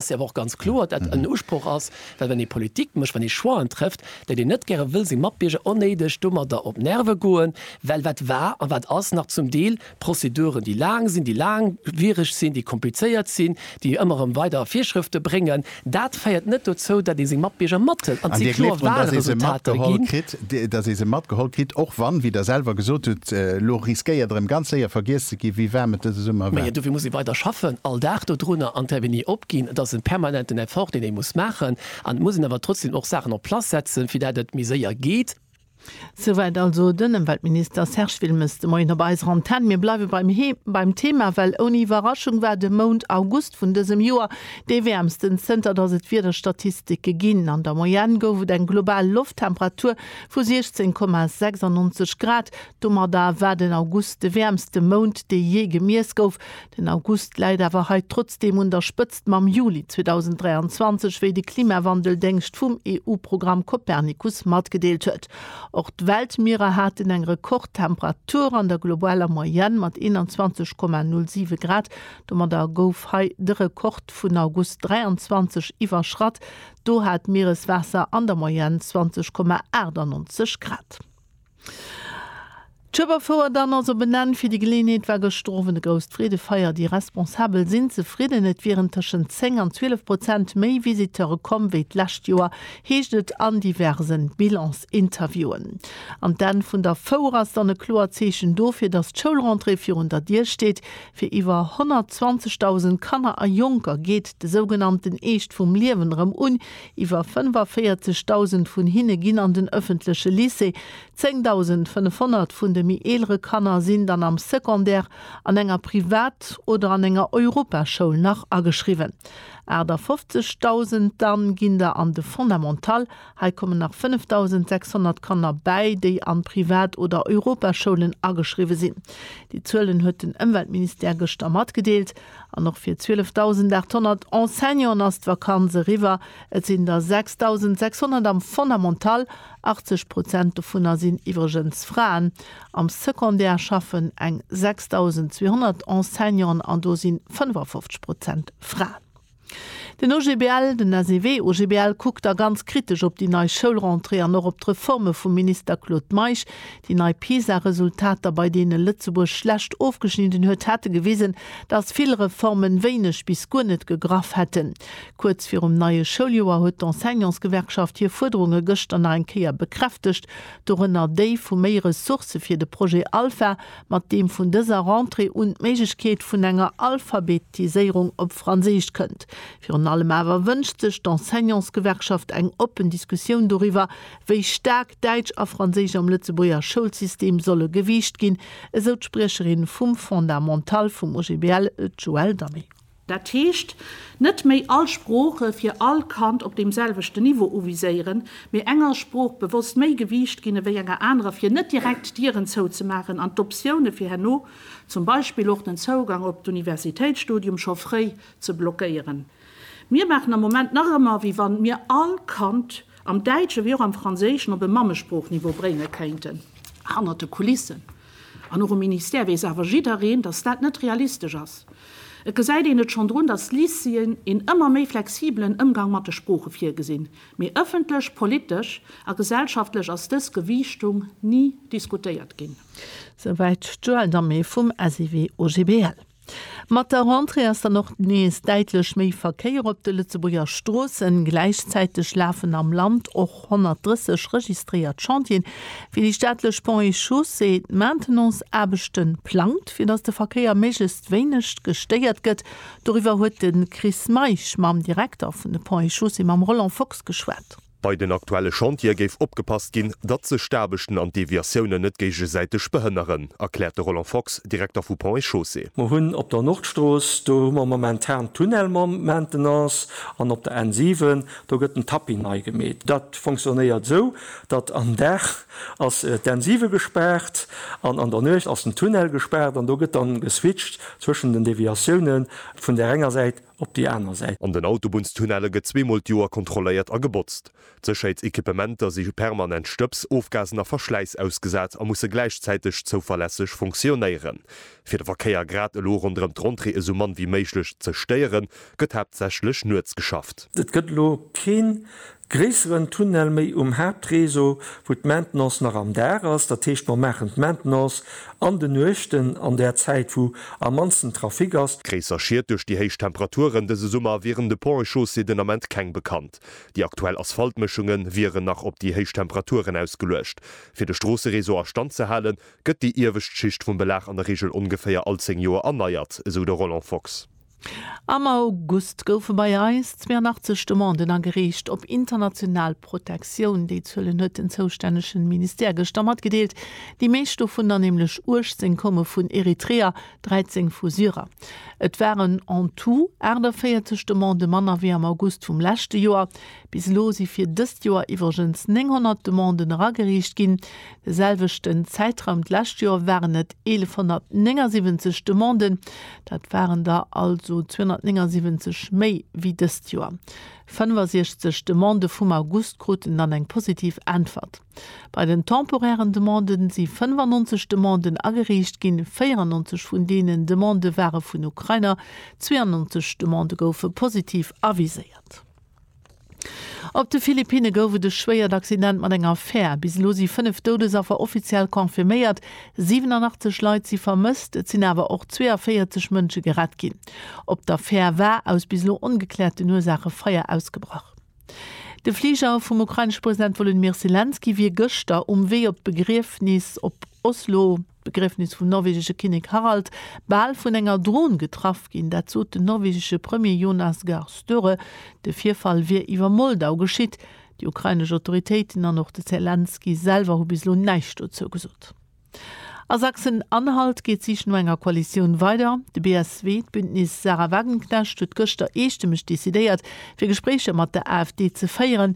Et ass awer och ganz kloer, datt en Usproch ass, well wann ee Politik mécht, wann ee Choixen trëfft, déi een net gäre wëll, seng Matbierger onnéideg domadder op d'Nerve goen, well wat war a wat ass nach zum Deel Prozeduren, déi laang sinn, déi laangwiereg sinn, déi komplizéiert sinn, déi ëmmer erëm weider Virschrëfte bréngen, dat féiert net dozou, datt ee seng Matbierger mathëlt. An et si kloer Walresultater ginn. dass ee se matgeholl kritt, och wann, wéi Der selwer gesot hutt, elo riskéiert erëm ganz séier vergiess ze gi wéi waarm et dëse Summer war. Mee dofir muss ee weider schaffen, all Dag dodrunner an d'Avenue opginn. Et ass e permanenten Effort, deen ee muss maachen. An et muss een awer trotzdem och Saachen en place setzen, fir dat et méi séier geet. Souwäit also den Ëmweltminister Serge Wilmes de Moien op eiser Antenn. Mir bleiwe beim Thema, well ouni Iwwerraschung war de Mount August August vun dësem Joer dee wäermsten zënter datt et Wiederstatistike ginn. An der Moyenne gouf et eng global Lofttemperatur vu 16,96 Grad. Domadder war den August de wäermste Mount, dee jee gemiess gouf. Den August läit awer hei trotzdeem un der Spëtzt mam Juli 2023, wéi de Klimawandel-Déngscht vum EU-Programm Copernicus matgedeelt huet. Och d'Weltmierer haten eng Rekordtemperatur an der globaler Moyenne mat 21,07 Grad, Domadder gouf hei de Rekord vun August 23 iwwerschratt, do hat d'Miereswaasser an der Moyenne 20,98 Grad. D'Schueber Fouer dann ass op en Enn, fir déi Geleeënheet war gëschter Owend e grousst Freedefeier. Déi Responsabel sinn zefridden, et wieren tëschent 10 an 12 Prozent méi Visiteure komm wéi d'lescht Joer, heescht et an diverse Bilans-Interviewen. An d'Enn vun der Fouer ass dann e kloert Zeechen dofir, datt d'Schoulrentrée virun der Dier steet. Fir iwwer 120.000 Kanner a Jonker geet de sougenannten Eescht vum Liewen erëm un. Iwwer 45.000 vun hinne ginn an den ëffentleche Lycée. 10.500 vun de méi eelere Kanner sinn dann am Secondaire an enger Privat oder an enger Europaschoul nach ageschriwwen. 58.000 dann ginn der an de Fondamental Hei kommen nach 5.600 Kanner bäi, déi an Privat oder Europaschoulen ageschriwwe sinn. Déi Zuelen huet den Ëmweltministère gëschter matgedeelt. An och fir 12.800 Enseignanten ass d'Vakanz eriwwer. Et sinn der 6.600 am Fondamental, 80 Prozent dovunner sinn iwwregens Fraen. Am Secondaire schaffen eng 6.200 Enseignanten an do si 55 Prozent Fraen. Den OGBL, den SEW OGBL, kuckt da ganz kritesch op déi nei Schoulrentrée an och op d'Reforme vum Minister Claude Meisch. Déi nei PISA-Resultater, bei deene Lëtzebuerg schlecht ofgeschnidden huet, hätte gewisen, datt vill Reformen wéineg bis guer net gegraff hätten. Kuerz virum neie Schouljoer huet d'Enseignantsgewerkschaft hir Fuerderunge gëschter nach eng Kéier bekräftegt, dorënner déi vu méi Ressourcë fir de Projet Alpha, mat deem vun dëser Rentrée un d'Méiglechkeet vun enger Alphabetiséierung op Franséisch kënnt. Virun allem awer wënscht sech d'Enseignantsgewerkschaft eng oppen Diskussioun doriwwer, wéi staark Däitsch a Franséisch am Lëtzebuerger Schoulsystem solle gewiicht ginn, esou d'Spriecherin vum Fondamental vum OGBL, d'Joëlle Damé. Dat heescht, net méi all Sprooche fir all Kand op deem selwechten Niveau uviséieren, mee enger Sprooch bewosst méi Gewiicht ginn ewéi enger anerer, fir net direkt d'Dieren zouzemaachen an d'Optioune fir herno, zum Beispill och den Zougang op d'Universitéitsstudium, scho fréi ze blockéieren. Mir maachen am Moment nach ëmmer, ewéi wa mir all Kand am Däitschen ewéi och am Franséischen op e Mammesproochniveau bréinge kéinten. Hannert de Kulissen An och um Ministère weess awer jiddereen, datt dat net realistesch ass. Et gesäit een et schonn drun, datt d'Lycéeën een ëmmer méi flexibelen Ëmgang mat de Sprooche virgesinn, mee ëffentlech, politesch a gesellschaftlech ass dës Gewiichtung ni diskutéiert ginn. Souwäit d'Joëlle Damé vum SIW OGBL. Mat der Rentrée ass dann och nees däitlech méi Verkéier op de Lëtzebuerger Stroossen. Gläichzäiteg lafen am Land och 130 registréiert Chantieren, fir déi staatlech Ponts et Chaussées d'Maintenance-Aarbechte plangt, fir datt de Verkéier méiglechst wéineg gestéiert gëtt. Doriwwer huet de Chris Meisch mam Direkter vun de Ponts et Chaussées, mam Roland Fox, geschwat. Bei den aktuelle Chantiere géif opgepasst ginn, datt sech d'Aarbechten an d'Deviatiounen net géigesäiteg behënneren, erkläert de Roland Fox, Direkter vu Ponts et Chaussées. Mer hunn op der Nordstrooss, do hu mer momentan de Tunnel mam Maintenance, an op der N 7, do gëtt den Tapis nei gemeet. Dat fonctionnéiert esou, datt am Dag ass d'N 7 gespaart an an der Nuecht ass den Tunnel gespaart an do gëtt da geswitcht zwëschen den Deviatioune vun där enger Säit op déi aner Säit. An den Autobunnstunnelle gëtt zweemol d'Joer kontrolléiert a gebotzt. D'Sécherheetsequipementer si permanent Stëbs, Ofgasen a Verschläiss ausgesat a musse gläichzäiteg zouverlässeg funktionéieren. Fir de Verkéier grad elo ronderëm d'Rentrée esou mann wéi méiglech ze stéieren, gëtt haaptsächlech nuets geschafft. Et gëtt elo keen Gréisseren Tunnel méi um Haaptréseau, wou d'Maintenance nach am Dag ass. Dat heescht, mer maachen d'Maintenance an de Nuechten, an där Zäit, wou am mannsten Trafic ass. Gréisser Schied duerch déi héich Temperaturen dëse Summer wieren de Ponts et Chaussées den Ament keng bekannt. Déi aktuell Asphaltmëschunge wieren nach op déi héich Temperaturen ausgeluecht. Fir de Stroosseréseau a Stand ze halen, gëtt déi iewescht Schicht vum Belag an der Reegel ongeféier all 10 Joer erneiert, esou de Roland Fox. Am August goufe bei eis 82 Demanden agereecht op international Protektioun. Déi Zuelen huet den zoustännegen Ministère gëschter matgedeelt. Déi meescht dovunner, nämlech 18, koume vun Eritreer, 13 vu Syrer. Et waren en tout 48 Demande manner wéi am August vum leschte Joer. Bis elo si fir dëst Joer iwwregens 900 Demanden erageriicht ginn. De selwechten Zäitraum d'lescht Joer waren et 1179 Demanden. Dat waren der also 279 méi wéi dëst Joer. 65 Demandë vum August kruten dann eng positiv Äntwert. Bei den temporären Demanden si 95 Demanden ageriicht ginn, 94 vun deenen Demandë ware vun Ukrainer, 92 Demandë goufe positiv aviséiert. Op de Philippinne gouf et e schwéiert Accident mat enger Fär. Bis elo si 5 Doudesaffer offiziell confirméiert. 87 Leit si vermësst, et sinn awer och 42 Mënsche gerett ginn. Op der Fär war aus bis elo ongekläerten Ursaache Feier ausgebrach. De Fliger vum ukrainesche President Wolodymyr Selenskyj wier gëschter um Wee op d'Begriefnis op Oslo. D'Begriefnis vum norwegesche Kinnek Harald bal vun enger Dron getraff ginn. Dat sot den norwegesche Premier Jonas Gahr Støre. De Virfall wier iwwer Moldau geschitt. Déi ukrainesch Autoritéiten an och de Zelenskyj selwer hu bis elo näischt dozou gesot. A Sachsen-Anhalt geet d'Sich no enger Koalitioun weider. De BSW, d'Bündnis Sarah Wagenknecht, huet gëschter eestëmmeg decidéiert, fir Gespréicher mat der AfD ze féieren.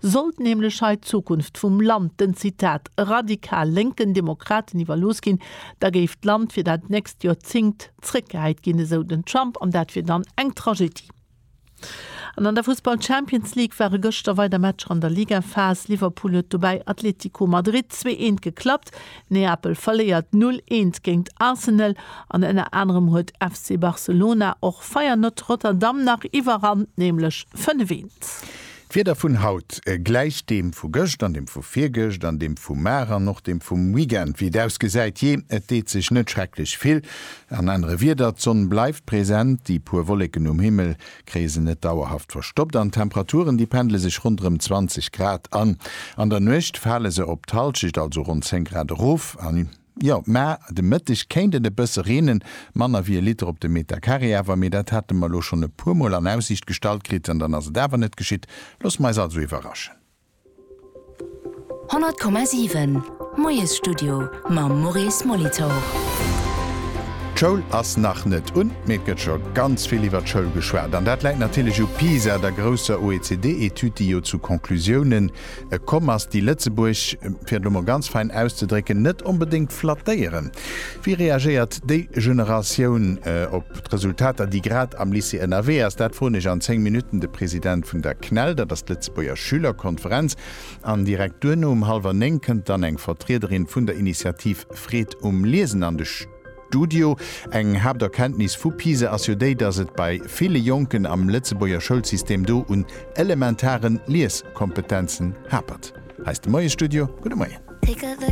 Sollt nämlech hei d'Zukunft vum Land den, Zitat, radikal lénken Demokraten iwwerlooss ginn, da géif d'Land fir dat nächst Joerzéngt zréckgehäit ginn, esou den Trump, an dat wier dann eng Tragedie. An an der Fussball-Champions League ware gëschter weider Matcher an der Ligaphas. Liverpool huet dobäi Atletico Madrid zwee eent geklappt, Neapel verléiert null eent géint Arsenal an ënner anerem huet FC Barcelona och Feyenoord Rotterdam nach iwwerrannt, nämlech fënnef eent. D'Wieder vun haut gläicht deem vu gëscht an deem vu virgëscht an deem vu mar an och deem vum Weekend. Wéi et ausgesäit, jee, et deet sech net schrecklech vill. An anere Wierder, d'Sonn bleift present, déi puer Wolleken um Himmel kréie se net dauerhaft verstoppt an d'Temperaturen, déi pendle sech ronderëm 20 Grad an. An der Nuecht fale se op d'Hallschecht, also ronn 10 Grad erof an. Jo, mä de Mëtteg kéint et e bësse reenen, manner wéi e Liter op de Meter Carré awer, mee dat hate mer elo schonn e puermol an Aussiicht gestallt kritt an dann ass et awer net geschitt. Loosse mer eis also iwwerraschen. 100,7 Moiesstudio mam Maurice Molitor. D'Schoul ass nach net un, mee et gëtt scho ganz vill iwwer d'Schoul geschwat. An dat läit natierlech u Pisa, der grousser OECD-Etüd, déi jo zu Conclusiounen, E komm ass déi Lëtzebuerg, fir et lo mol ganz fein auszedrécken, net onbedéngt flattéieren. Wéi reagéiert déi Generatioun op d'Resultater, déi grad am Lycée ënnerwee ass? Dat froen ech an 10 Minutten de President vun der CNEL, dat ass d'Lëtzebuerger Schülerkonferenz. An direkt duerno um hallwer 9 kënnt dann eng Vertriederin vun der Initiativ Freed um Liesen an de. D'UDIO, Eng Haapterkenntnis vu PISA ass jo déi, datt et bei ville Jonken am Lëtzebuerger Schoulsystem do un elementaren Lieskompetenzen hapert. Hei ass de Moiesstudio. Gudde Moien.